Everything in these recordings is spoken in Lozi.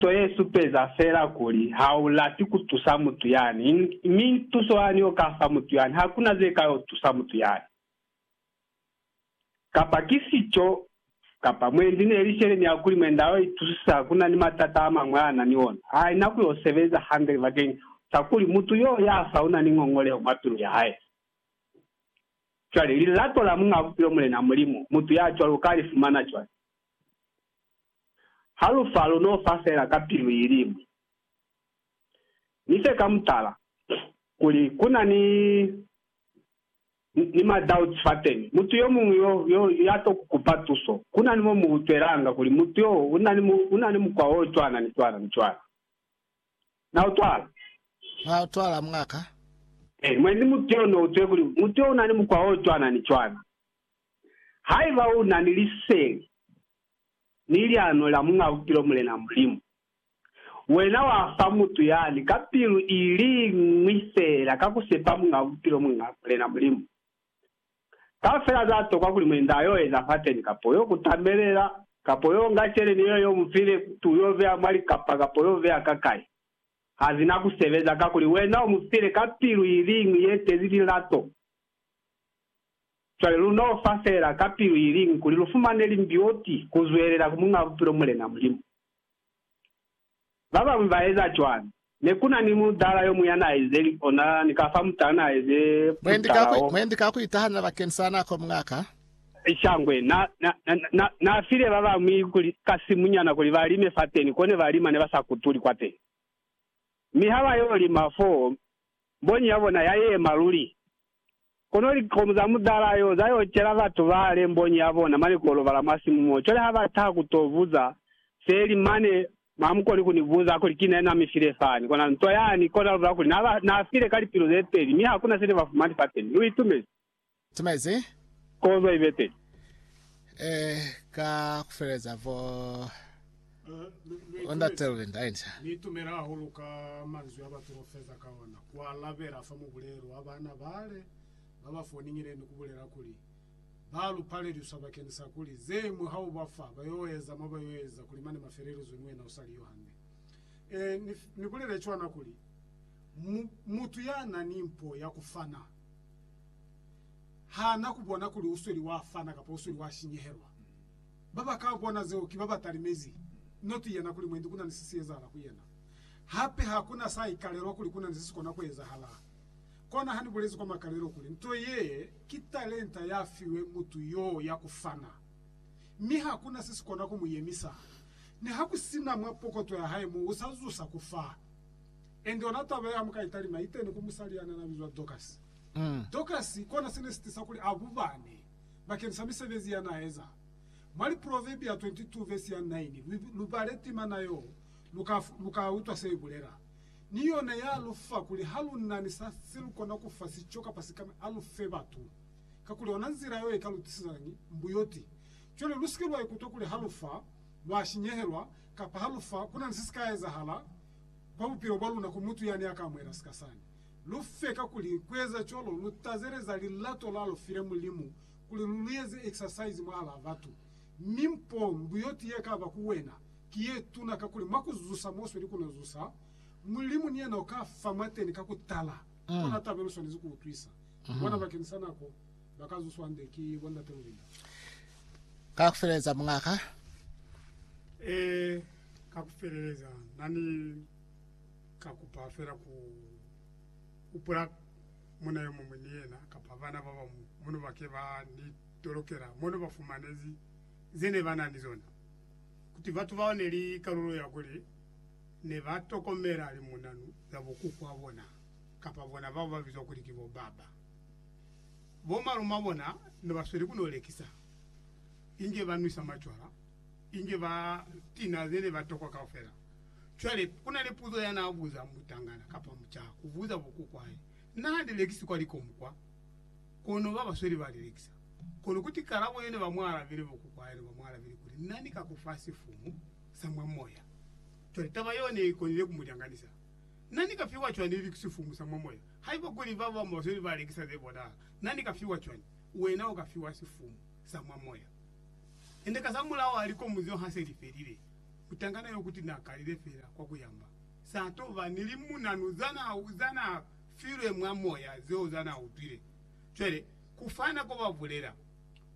Nto ye supeza fela kuli ha u lati ku tusa mutu yani, mi tuso yani o ka fa mutu yani ha ku na ze ka yo tusa mutu yani. Kapa ki sico, kapa mwendi ne li sheleni ya kuli mwenda yo itusisa ku na ni matata a mañwi a na ni ona, ha i na ku yo sebeza hande bakeñi sa kuli mutu yo ya fa u na ni ngongoleho mwa pilu ya hae. Cwale, lilato la Muñ'a Bupilo Mulena Mulimu, mutu ya cwalo u ka li fumana cwañi? Ha lu fa, lu n'o fa fela ka pilu i li ñwi. Ni fe ka mutala, kuli, ku na ni, ni ma-doubts fateni. Mutu yo muñwi yo, yo, ya t'o ku kupa tuso. Ku na ni mo mu utwelanga kuli mutu yo u na ni, u na ni mukwa o cwana, ni cwana, ni cwana. Na utwala? Na utwala, mwa ka? Ee, mwe ni mutu yo n'o utwile kuli mutu yo u na ni mukwa o cwana, ni cwana. Haiba u na ni liseli, Ni liano la Muñ'a Bupilo Mulena Mulimu. Wena wa fa mutu yani ka pilu i li ñwi feela ka ku sepa Muñ'a Bupilo Mulena Mulimu. Kaufela za tokwa kuli mwendi a y'o eza fateni, kapo y'o kutamelela, kapo y'o nga celeni yeo y'o mu file, kutu y'o beya mwa likapa kapo y'o beya ka kai, ha zi na ku sebeza, kakuli wena u mu file ka pilu i li ñwi ye tezi lilato. Cwale lu n'o fa feela ka pilu i liñwi kuli lu fumane limbioti ku zwelela ku Muñ'a Bupilo Mulena Mulimu. Ba bañwi ba eza cwani. Ne ku na ni mutala yo muñ'a n'a eze li ona ni ka fa mutala n'a eze mutala wo. Mwendi ka ku itahanya bakeni sa nako muñ'a ka. Shangwe na, na, na, na, na file ba bañwi kuli, ka simunyana kuli ba lime fateni, ko ne ba lima ne ba sa kutuli kwateni. Mi ha ba y'o lima foo, mbonyi ya bona ya yema luli, Kono likhomu za mutala yo za yo cela batu ba le mbonyi ya bona mane ko lobala mwa simu mo. Cwale ha ba taha ku to buza se li mane, ha mu koni ku ni buza kuli ki nani na mi file fani. Kona nto yani kona lubala kuli na ba na file ka lipilu ze peli, mi hakuna se ne ba fumani fateni. Lu itumezi? Tumezi. Kozo ibe teli. E, ka ku feleza foo. Bo ndate luli nda inca. Ni itumela hahulu ka manzwi a ba tolofeza ka ona, ku alabela fa mubulelo wa baana bale ba ba foningile ni ku bulela kuli, Ba lu paleliswa bakeni sa kuli, ze ñwi ha u ba fa, ba yo eza mo ba yo eza kuli mane ma felelizwe ni wena u sa li yo hande. Ee, ni, ni bulele cwana kuli, mu, mutu ya na ni mpo ya ku fana, ha na ku bona kuli u sweli wa fana kapa u sweli wa sinyehelwa. Ba ba ka bona zeo ki ba ba talimezi. Not yena kuli mwendi ku na ni se si ezahala ku yena. Hape ha ku na sa ikalelwa kuli ku na ni se si kona ku ezahala. Kona ha ni bulezi kwa makalelo kuli, nto ye ki talenta ya fiwe mutu yo ya ku fana. Mi ha ku na se si kona ku mu yemisa. Niha ku si na mwa pokoto ya hae mo, u sa zusa ku fa. And ona taba ye ha mu ka i talima, i teni ku musali ya na na bizwa Dorcas. Dorcas kona se ne si tisa kuli a bubane. bakeng sa misebezi ya n'a eza. Mwa Liproverbia 22 vesi ya 9, lu, lu bale timana y'o, lu ka, lu ka utwa se i bulela. Ni yona ya lu fa kuli ha lu na ni sa se lu kona ku fa sico kapa sikami, a lu fe batu, kakuli ona nzila y'o i ka lu tisizañi? Mbuyoti. Cwale lu si ke lwa ikutwa kuli ha lu fa, lwa sinyehelwa, kapa ha lu fa, ku na ni se si ka ezahala kwa bupilo bwa luna ku mutu yani ya ka amuhela sika sani. Lu fe kakuli kueza cwalo lu tazeleza lilato la lu file Mulimu kuli lu lu eze exercise mwahalaa batu. Mi mpo mbuyoti ye ka ba ku wena ki ye tuna kakuli mwa ku zusa mo sweli ku no zusa, Mulimu ni yena u ka fa mwateni ka ku tala. Kona taba ye lu swanezi ku utwisa. Bona bakeni sa nako ba ka zuswa hande ki bo Ndate Lulinda. Ka ku feleleza, mungaka. Ee, ka ku feleleza. Na ni. Ka kupa fela ku hupula muna yo muñwi ni yena kapa bana ba ba muno ba ke ba ni tolokela mo ne ba fumanezi ze ne ba na ni zona. Kuti batu bao ne li kalulo ya kuli ne ba tokomela limunanu za bo kuku wa bona kapa bona bao ba bizwa kuli ki bo baba. Bo malumabona ne ba sweli ku no lekisa inge ba nwisa macwala inge ba tinazele batokwa kaufela. Cwale, ku na ni puzo ya n'a buza mutangana kapa mucaha ku buza bokuku hae, Na li lekisi kwa likomu kwa? Kono ba ba sweli ba li lekisa. Kono kuti kalabo ye ne ba mu alabile, bokuku hae ne ba mu alabile kuli, Na ni ka ku fa sifumu sa mwa moya. Cwale, taba yeo ne i konile ku mu lyanganisa. Na ni ka fiwa cwani li sifumu sa mwa moya? Haiba kuli ba bañwi ba sweli ba lekisa ze bonahala, na ni ka fiwa cwani? Wena u ka fiwa sifumu sa mwa moya. Nende kazamulaho ha likomu zeo ha se li felile, mutangana yo kuti na kalile fela kwa ku yamba, sa to ba ni limunanu za na, za na filwe mwa moya zeo za na utwile. Cwale, ku fana ko ba bulela.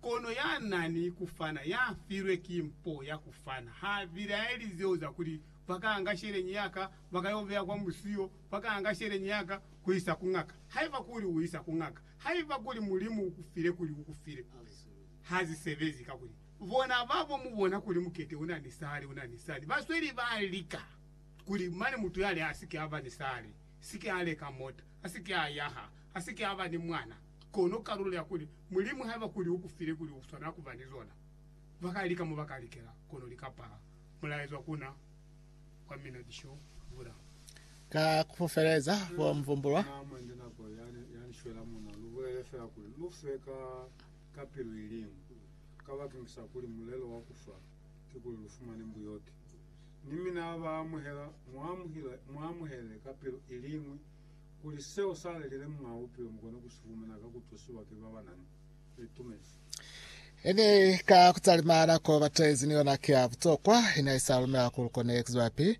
Kono ya na ni ku fana, ya filwe ki mpo ya ku fana, ha bilaeli zeo za kuli, Ba ka anga sheleñi ya ka, ba ka yo beya kwa musiyo, ba ka anga sheleñi ya ka, ku isa ku ngaka, haiba kuli u isa ku ngaka, haiba kuli Mulimu u ku file kuli u ku file. ha zi sebezi, kakuli bona ba bo mu bona kuli mukete u na ni sali, u na ni sali. Ba sweli ba lika kuli mane mutu yale a si ke a ba ni sali, si ke a leka mota, a si ke a yaha, a si ke a ba ni mwana. Kono kalulo ya kuli Mulimu haiba kuli u ku file kuli u swanela ku ba ni zona, ba ka lika mo ba ka likela, kono li ka pala. Mulaezwa ku na kwa mina ki xo bula. Ka ku feleza, bo Mvumbulwa. ka pilu iliñwi, kabakeng sa kuli mulelo wa kufa kikuli lufumane mbuyoki. Ni mina habaamuhela, muamuhele ka pilu iliñwi kuli seo salelile Muñaa Bupilo mukone kusifumana ka kutusiwa ki babanani litumezi. Ini ka kutalima nako batezi ni yona ki ya butokwa, ini haisa lumela kuli kone kuzwelapi